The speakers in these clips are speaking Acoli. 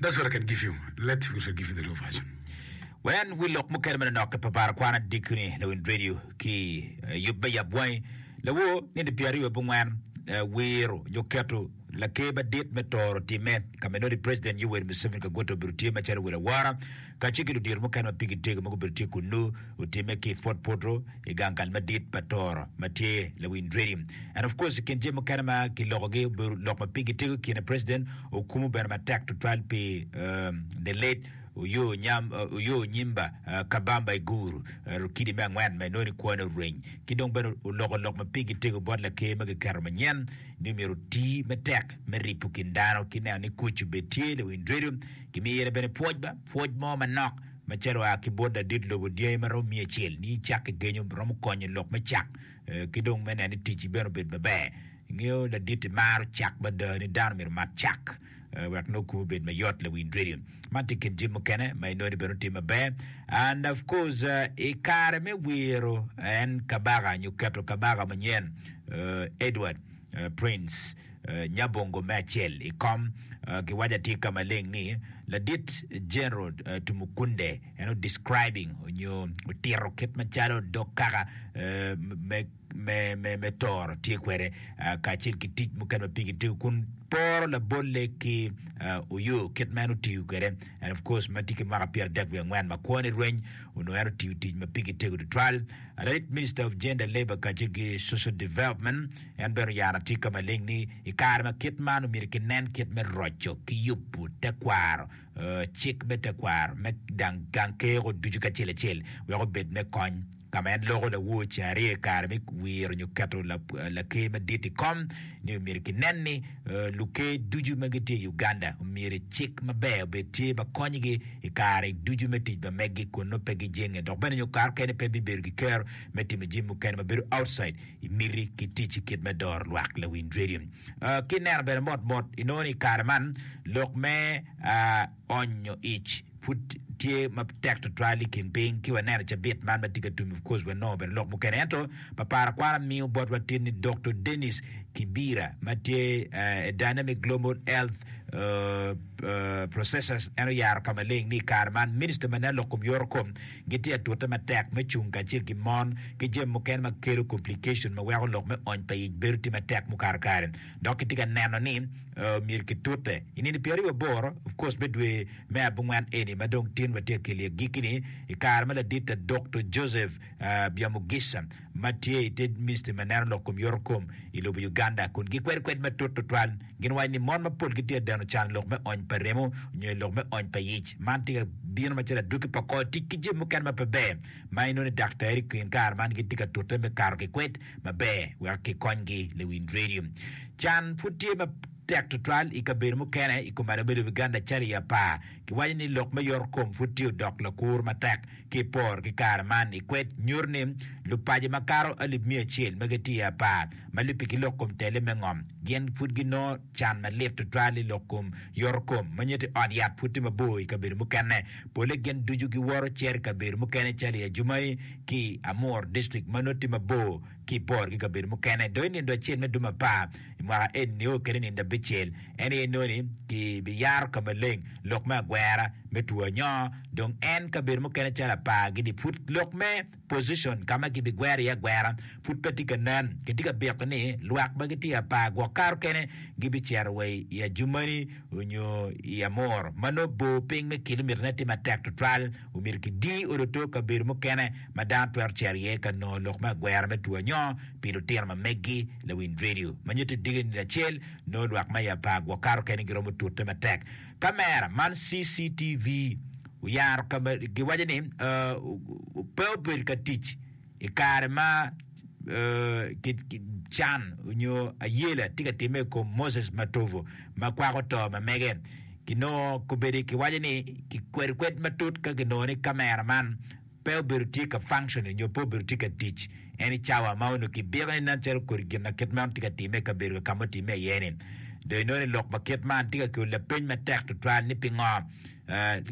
That's what I can give you. Let me give you the new version. Wen wi lok mukene ma nanokke pa bar kwan adiki ni Lawin Radio ki eh, yub me yab wangi lawo nino pyera aryo bungwen eh, wiro nyo keto laker madit me toro timme ka menodi President Yoweri Museveni Kaguta obedo tye macalo wel awora kacel ki ludito mukene ma pigi tego ma gubedo tye kunnu, otimme ki i Fort Portal i gang kal madit pa Toro ma tye lawi Ndredi. And of course i kin jami mukene ma kilokogi obedo lok ma pigi tego i kine President okumo bene matek tutwal pi the late Oyoo Onyimba Kabamba Iguru, Rukidi me angwen ma inongo ni kwone oreny, ki dong bene oloko lok ma pigi tego bot laker ma kiketo manyen ni myero oti matek me ripo kin dano ki neno ni kuc obed tye lawi Ndredi. Gimire bene pwoc ba pwoc mo manok macalo oa ki bot ladit lobo dyangi ma romo miya acel ni icak ki genyo romo konyo lok me cak ki dong me neno ni ticci bene obedo maber. Ingeyo laditi maro cak mada ni dano myero omak cak wek nongo kome obed mayot lawiny radio. Man tye kin jami mukene ma inongo ni bene otye maber and of course i kare me wiro en kabaka nyo keto kabaka manyen Edward Prince Nyabongo me acel i kom giwaco atika maleng ni Ladit General Tumukunde en o describing onyo otito kit macalo dog kaka me toro tye kwede kacel ki tic mukene ma pigi tegu kun poro labolle ki Oyo kit ma en otiyo kwede and of course matye ki mwaka pyera dek wiye angwen ma kwone rweny onongo en otiyo tic ma pigi tego tutwal. Rit, Minister of Gender, Labour kacel ki Social Development, en bene oyaro atika maleng ni i kare ma kit man omyero kinen kit me roco ki yubo tekwaro, cik me tekwaro me gang keko ducu kacel acel wek obed me kony. Ka ma en loko lawoc aryo i kare me wiro nyo keto Laker Madit i kom ni omyero kinen ni Luker ducu ma gitye i Uganda myero cik maber obed tye ma konyogi i kare ducu me tic ma meggi kun nongo pe gijenge dok bene nyo kare okene pe bibedo ki kero me timo jami mukene ma bedo outside i miti ki ticci kit me doro lwak lawiny rediyo. Ki ineno bene mot mot inongo ni i kare man lok me Ony nyo ic pud tye ma tek tutwal i kin piny ki waneno cabit man ma tye ka tum of course wanongo bene lok mukene ento papara kwara miyo bot watin ni Doktor Dennis Kibira ma tye a Dynamic Global Health Processors en oyaro ka maleng ni i kare man Minista ma nen lok kom yoro kom gitye ka tute matek me cung kacel ki mon ki jami mukene ma kelo complication ma weko lok me ony pa ic bedo tye matek mukato kare. dok kitye ka neno ni myero kitute i nino pyeraryo wa boro, of course me dwe me abongwen eni ma dong tin watye ka kelo iye giki ni, i kare ma ladit ta Dokto Joseph Byamugisha ma tye i te Ministry ma neno lok kom yoto kom i lobo Uganda kun gikwedo kwed matut tutwal. Gin waco ni mon mapol gitye ka deno can i lok me ony pa remo nyo i lok me ony pa yic. Man tye ka bino macalo adwogi pa kor tic ki jami mukene ma pe ber ma inongo ni daktari i kin kare man gitye ka tute me kato ki kwed maber wek kikonygi. Lewin Radio, Can pud tye matek tutwal i kabedo mukene i kom ado bedo Uganda calo i apar. Kiwaco ni lok me yoto kom pud tye odok lakur matek. Ki i poro ki kare man i kwed nyuto ni lupaco makato alip miya acel ma gitye i apar ma lubbe ki lok kom tele me ngom gin pud ginongo Can malit tutwal i lok kom yoto kom ma nyuto ni ot yat pud tye mabor i kabedo mukene. Polle gin ducu giwoto cito i kabedo mukene calo i Adjumani ki Amur district ma nongo tye mabor ki i bor ki kabedo mukene. Dong i nindo acel me dwe me apar i mwaka eni nio kede nindo abicel en aye nongo ni ki bi yaro ka maleng lok me agwera me two anyoo dong en kabedo mukene calo apar gini pud lok me position, ka ma gibigwero iye agwera pud pe tye ka nen. Kitye ka biko ni lwak ma gitye apar gwok karo kene gibicito wa i Ajumani onyo i Amur, ma nongo bor piny me kilomitane tye matek tutwal. Omyero kidi odo to kabedo mukene ma dano twero cito iye ka nongo lok me agwera me two anyongo pi lutino ma meggi. Lawiny redio ma nyuto i dige nino acel nongo lwak ma i apar gwok karo kene giromo tute matek. Kamera man, CCTV, oyaro ka ma giwaco ni pe obedo ka tic i kare ma can onyo ayela tye ka timme i kom Moses Matovu ma kwako to ma mege. Kinongo kobedi kiwaco ni kikwedo kwed matut ka kinongo ni kamera man pe obedo tye ka function-e nyo pe obedo tye ka tic any cawa ma onongo kidiko ni nen calo kodi gin ma kit meno tye ka timme i kabedo kaka ma otimme iye-ni. Dong inongo ni lok ma kit man tye ka kelo lapeny matek tutwal ni pingo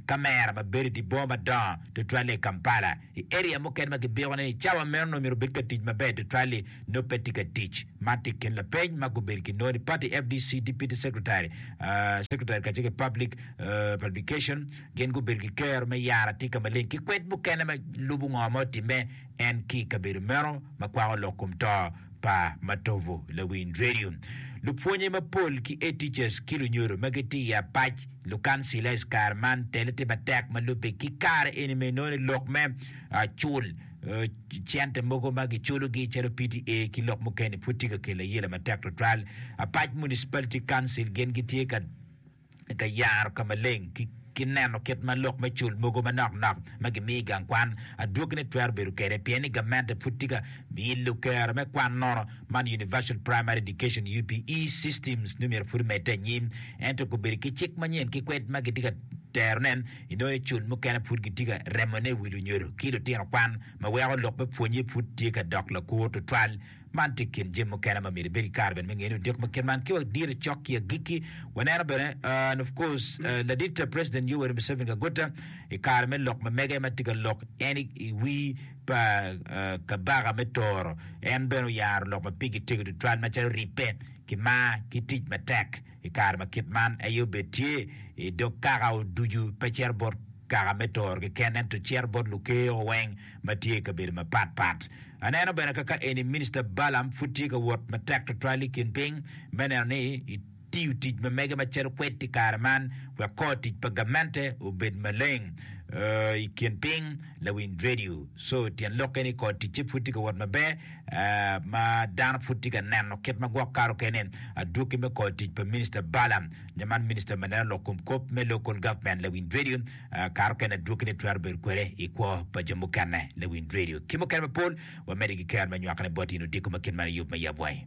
kamera ma bedo i dye boma madongo tutwal-li i Kampala, i area mukene ma kibiko ni i cawa meno onongo myero obed ka tic maber tutwal-li nongo pe tye ka tic. Man tye i kin lapeny ma gubedo ki nongo ni Party FDC Deputy Secretary, Secretary kacel ki Public Publication, Gin gubedo ki kero me yaro atika maleng ki kwed mukene ma lubo ngo ma otimme en ki i kabedo meno ma kwako lok kom to pa Matovu Lawiny Radio. Lupwonye mapol ki Head Teachers ki lunyodo ma gitye i apac lukancila is kare man tele tye matek ma lubbe ki kare eni ma inongo ni lok me cul cente mogo ma giculogi calo PTA ki lok mukene-ni pud tye ka kelo ayela matek tutwal. Apac Municipality Council gin gitye ka i ka yaro ka maleng ki ki neno kit ma lok me cul mogo manok nok ma gimiyo i gang kwan adwogine twero bedo kwede, pien ni gamente pud tye ka ilo kero me kwan nono. Man Universal Primary Education, UPE, system nongo myero pud omedde anyim, ento gubedo ki cik manyen ki kwed ma gitye ka terone, inongo ni cul mukene pud gitye ka remone i wi lunyodo ki lutino kwan, ma weko lok me pwonnye pud tye ka dok lakur tutwal. Man tye i kin jami mukene ma myero ibed ki kare bene me ngene odik ma kit man. Ki wa dire cok ki agikki, waneno bene and of course ladit President Yoweri Museveni Kaguta i kare me lok ma mege ma tye ka lok en i wii pa Kabaka me Toro en bene oyaro lok ma pigi tego tutwal macalo ribbe ki mar ki tic matek. i kare ma kit man aye obed tye i dog kaka oducu, pe cito bot kaka me toro keken, ento cito bot lukeo weng ma tye i kabedo mapat pat. Aneno bene kaka eni Minista Balaam pud tye ka wot matek twatwal i kin piny me neno ni etiyo tic ma mege macalo kwed i kare man wek kor tic pa gamente obed maleng i kin piny. Lawiny Radio Co. Tyen lok eni kor ticce pud tye ka wot maber. ma dano pud tye ka neno kit ma gwok kato kene. Adwoki me kor tic pa Minista Bala, nyo man Minista ma neno lok kom kop me Local Government Lewin Dredyo, kato kene adwokine twero bedo kwede i kwo pa jo mukene. Lewin Dredyo ki mukene mapol wamedde ki ker me nywakone bot in odiko ma kit man i yub me yab wangi.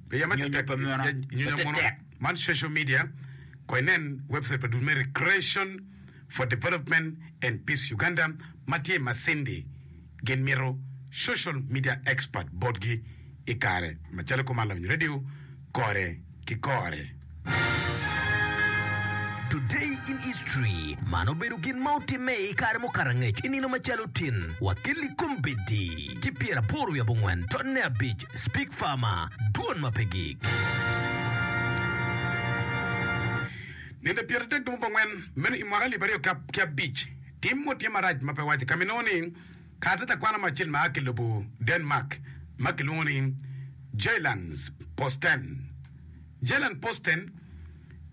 Piya ma nyonyo pa munu matetek. Man social media ko inen website pa dul me Recreation for Development and Peace Uganda ma tye i Masindi gin mito social media expert botgi i kare macalo i kom Aluny Radio kore ki kore. Today in History, Man obedo gin ma otimme i kare mukato angec i nino macalo tin, Wakeli Combeddi ki pyera aboro wiye abongwen tonne abic, Speke Farmer, dwon ma pe gik. Ninde pyera adek dong bongwen, meno i mwaka alip aryo ki abic, tim mo tye marac ma pe wace ka ma inongo ni kare tye takwano mo acel ma a ki lobo Denmark ma ki lwongo ni Jyllands-Posten, Jalen Poston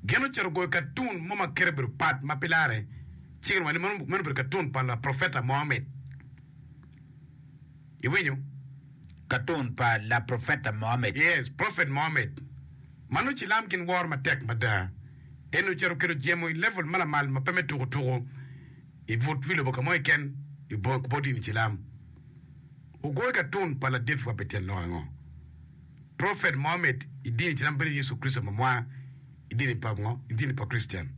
gin ocito goyo katun mo ma kite obedo pat ma pi larre ciro wa ni meno obedo katun pa Laprofeta Mohammed. Iwinyo? Katun pa Laprofeta Mohammed. Yes, Prophet Mohammed. Ma nongo cilam gin woro matek mada. En ocito oketo jemo i level ma lamal ma pe me tuku tuku i but wi lobo ka mo keken i bot dini cilam. Ogoyo katun pa ladit wa pi tyen lok ango? Prophet Mohammed i dini ci dong bedo Yecu Kricito ma mwaka i dini pa ngo? I dini pa Krictian.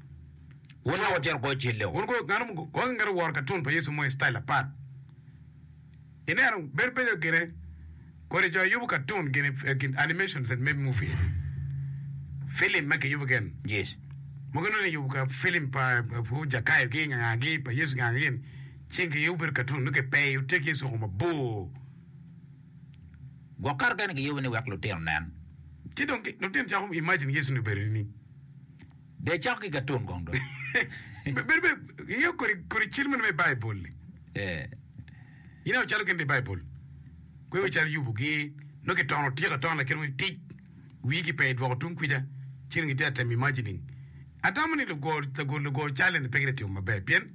Wun dong wutito kwo cilo. Wun kwo nganu mo gwoko ngeto woro katun pa Yecu mo i style apat? Ineno bedo beco gine kodi jo yubo katun gini i kin animations and maybe movie eni. Film ma kiyubo gin. Yes. Mogo inongo ni yubo ka film pa uh, Jakayo gi nga nga gi pa Yecu nga nga gin. Cing kiyubo bedo katun nongo kipeyo tye ki Yecu oko mabor. Gwok kato kene giyubo ni wek lutino nen. Ci dong lutino cako imagine Yecu ni obedo nining? Dee cako ki katun kong dong. Be- Bedo be ingeyo kodi kodi cal meno me i Baibul-li? Eh, Ineno cal okene i Baibul? Kwe wi cal yubugi, nongo kitono otyeko atona laket mo i tic, wigi pe idwoko tung kwica, ci dong gitye ka temo imagining. Atamo ni lugo lago lugo cal eni pe gitye ka timo maber pien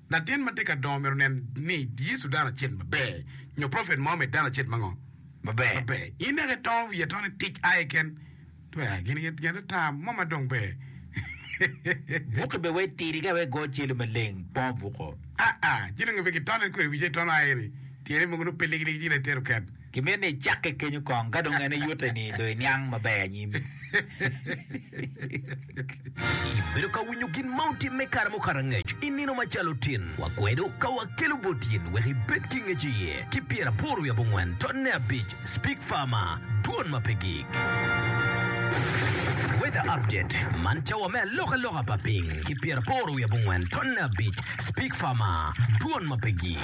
Latin ma tye ka dongo myero onen ni Yecu dano acel maber, nyo profet mo me dano acel mango maber. In naka itongo wiye atona i tic aye ken, twero aye gin gin ata mo ma dong ber. Buke bene wek tidi ka wek go celu maleng po buko. Aa, ci dong pe gitone kwede wice itono aye ni tyene mogo nongo pe ligiligi ci lete oket. Kimit ni icakke kenyo kong, ka dong en eyute ni dong iniang maber anyim. Ibedo ka winyo gin ma otimme kare mukato angec i nino macalo tin wa kwedo ka wakelo bot in wek ibed ki ngec iye ki pyer aboro wi abongwen ton ne abic Speak Farmer Dwon ma pe gik. Weather Update Man cawa me aloka loka pa piny ki pyer aboro wi abongwen ton ne abic Speak Farmer Dwon ma pe gik.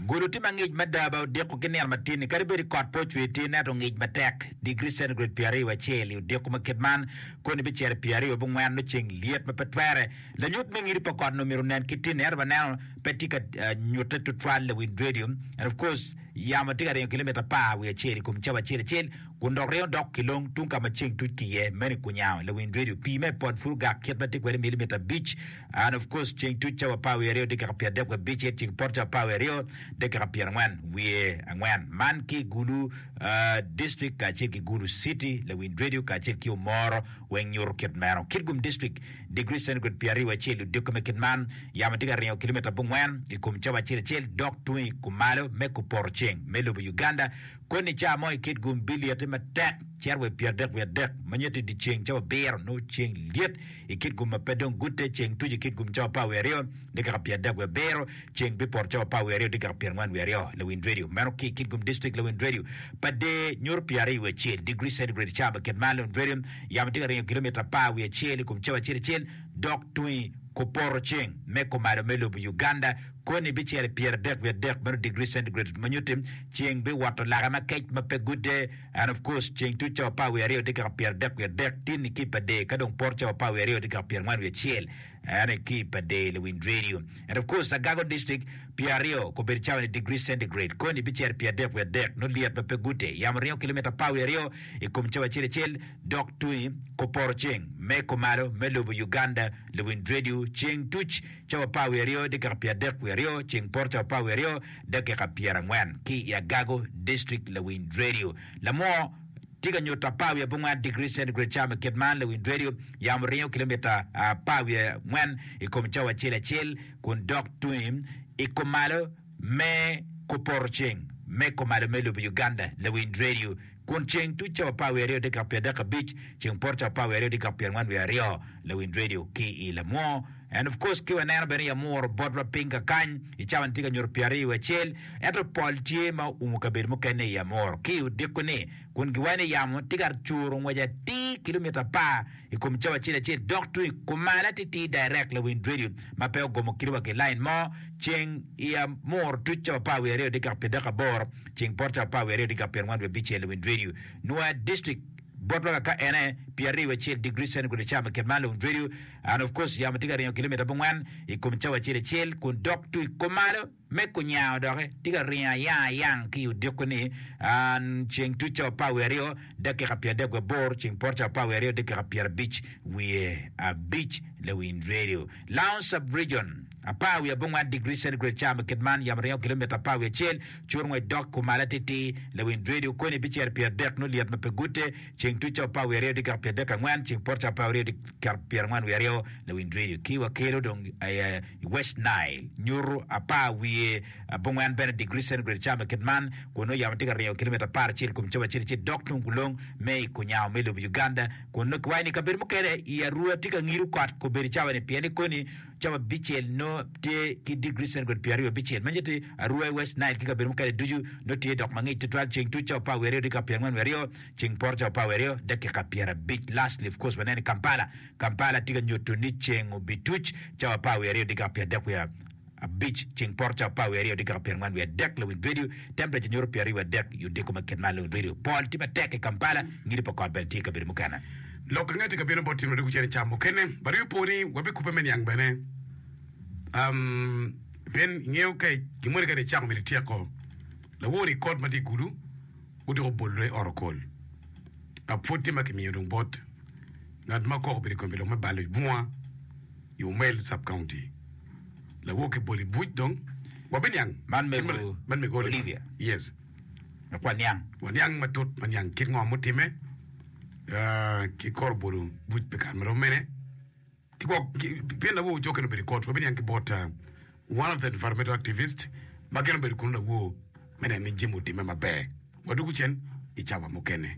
Gulu tye ma ngic mada ba odiko ki nino matin-ni kadi bed kot pe ocwe itir ento ongic matek. Digri centigrade pyer aryo wacel i odiko ma kit man koni bicito i pyer aryo wabongwen nongo ceng lyet ma pe twere. Lanyut me ngidi pa kot ni omyero onen kit tinni ento waneno pe tye ka nyute tutwal i wind radio and of course yamo tye ka ringo kilometer apar wiye acel i kom cawa acel acel kun dok ringo dok ki long tung ka ma ceng tuc ki iye meno i kunyango lawind radio pii me pod pud ogak kit ma tye kwede milimeter abic And of course ceng tuc cawa apar wiye aryo dekeka pyer adek wa bicit ceng poto cawa apar wiye aryo dekeka pyer angwen wiye angwen man ki Gulu district kacel ki Gulu city lawind radio kacel ki Omoro weng nyuto kit meno Kitgum district degree centigrade pyer aryo acel ludiko me kit man yamo tye ka ringo kilometer abongwen ikom cawa acel acel dok tung ikumalo me kupoto ceng me lobo Uganda Koni ca mo i kit gun bilyeti matek cito wa i pyeradek wiye adek, ma nyuto i dyeceng cawa abiro, nongo ceng lyet i kit gun ma pe dong gute, ceng tuco i kit gun cawa apar wiye aryo, dikaka pyeradek wiye abiro, ceng bipoto cawa apar wiye aryo, dikaka pyerangwen wiye aryo. Lawiny radio meno ki i kit gun dictrict lawiny radio pa der nyuto pyeraryo wiye acel, degree centigrade, cawa pa kit mar lawiny radio. Yamo tye ka ringo kilomita apar wiye acel i kom cawa acel acel, dok tungi kupoto ceng me kumalo me lobo Uganda, Koni bicel pyeradek wiye adek meno degree centigrade ma nyuti ceng bi woto lake ma kec ma pe gude and of course ceng tuc cawa par wiye aryo tye kika pyeradek wiye adek tini ki pa dee ka dong poto cawa par wiye aryo tye kika pyerangwen wiye acel ane ki pa dee liwiny radio and of course agago district pyeraryo kobedo cawa ni degree centigrade koni bicel pyeradek wiye adek no lyet ma pe gude yamo ringo kilomita par wiye aryo i kom cawa acel acel dok tungi kuporo ceng me kumalo me lobo Uganda liwiny radio ceng tuc cawa apar wiye aryo dakika pyeradek wiye aryo ceng poto cawa apar wiye aryo dakika pyerangwen ki i agago district lawiny radio lamo tye ka nyuto apar wiye abongwen degree centigrade cawa me kit man lawiny radio yamo ringo kilomita apar wiye angwen i kom cawa acel acel kun dok tungi i kumalo me kupoto ceng me kumalo me lobo Uganda lawiny radio Kun ceng tuc cawa apar wiye aryo dikap pyer dek abic, ceng poto cawa apar wiye aryo dikap pyer angwen wiye aryo, lawiny radio ki i lamwo. And of course ki waneno bene yamuru bot wa piny ka kany i cawa ni tye ka nyuto pyer aryo wiye acel, ento pol tye ma oumo kabedo mukene i yamuru ki i odiko ni, kun giwaco ni yamo tye ka curu ngwec atir kilometer apar i kom cawa acel acel dok tung i kumalo atitir direct lawiny radio ma pe ogomo kite wa ki line mo, ceng i yamuru tuc cawa apar wiye aryo dikap pyer dek aboro. ceng poto apar wiye aryo dika pyerangwen wiye abicel i Windredio, Nua District, bot loka ka ene pi ariyo acel degree centigrade i cawa me ket man loyo Windredio, and of course yamo tye ka ringo kilometer abongwen i kom cawa acel acel kun dok to i komalo me kunyango doki tye ka ringo ayang ayang ki i odiko ni and ceng tut cawa apar wiye aryo dakika pyer adek wiye abor ceng poto cawa apar wiye aryo dakika pyer abic wiye abic le Windredio, Lounge Sub-Region. apar wiye abongwan digri centigrade ca ma kit man yamo ringo kilomita apar wiye acel, cur ngwec dok kumal atitir, lawiny Dwedi okoni bicel pyeradek nyo lyet ma pe gute, ceng tuk ca apar wiye aryo digek pyeradek angwen, ceng poto ca apar aryo digek pyerangwen wiye aryo, lawiny Dwedi ki wa kelo dong aye i West Nile, nyutu apar wiye abongwan bene digri centigrade ca ma kit man, kun nongo yamo tye ka ringo kilomita apar acel i kom cobo acel acel dok tung kulong me i kunyango me lobo Uganda, kun nongo kiwaco ni i kabedo mukene i arua tye ka ngidu kot kobedi cawa-ni pien ni koni Cam abicel nongo tye ki digri centigrade pyeraryo abicel. Meje tye Arua i West Nile ki kabedo mukene ducu nongo tye dok mangic tutwal. Ceng tuc cawa apar wiye aryo dakika pyera angwen wiye aryo, ceng poto cawa apar wiye aryo dakika pyera abic. Lastly of course waneno i Kampala, Kampala tye ka nyuto ni ceng obituc cawa apar wiye aryo dakika pyera adek wiye abic, ceng poto cawa apar wiye aryo dakika pyera angwen wiye adek. Lawinj radio, temperature nyuto pyera aryo wiye adek i odiko ma kit man. Lawinj radio, pol tye matek i Kampala, ngidi pa kot bene tye i kabedo mukene. Lok angati ka bino bot tyen wadiko cene cam mukene bade wi po ni wabikube me niang bene um pien ingeyo ka gin moni kadi icako mito ityeko lawo ni kot matye igulu odiko bollo i ot okol ka pwod tye ma kimiyo dong bot ngat ma kok obedo ikompi lok me balo bunga i Umel sub county lawo ki bol ibuc dong wabiniang Man kit mego man mego Olivia Olivia. yes Dok waniang. waniang matut maniang kit ngo mutime. ki kor bolo buc pi kare ma rom mene, ki gwok, pien lawo jo kene obedo i kot, wabiniang ki bot one of the environmental activist ma kene obedo kunu lawo me neno ni jami otimme maber. Wadwogo cen i cawa mukene.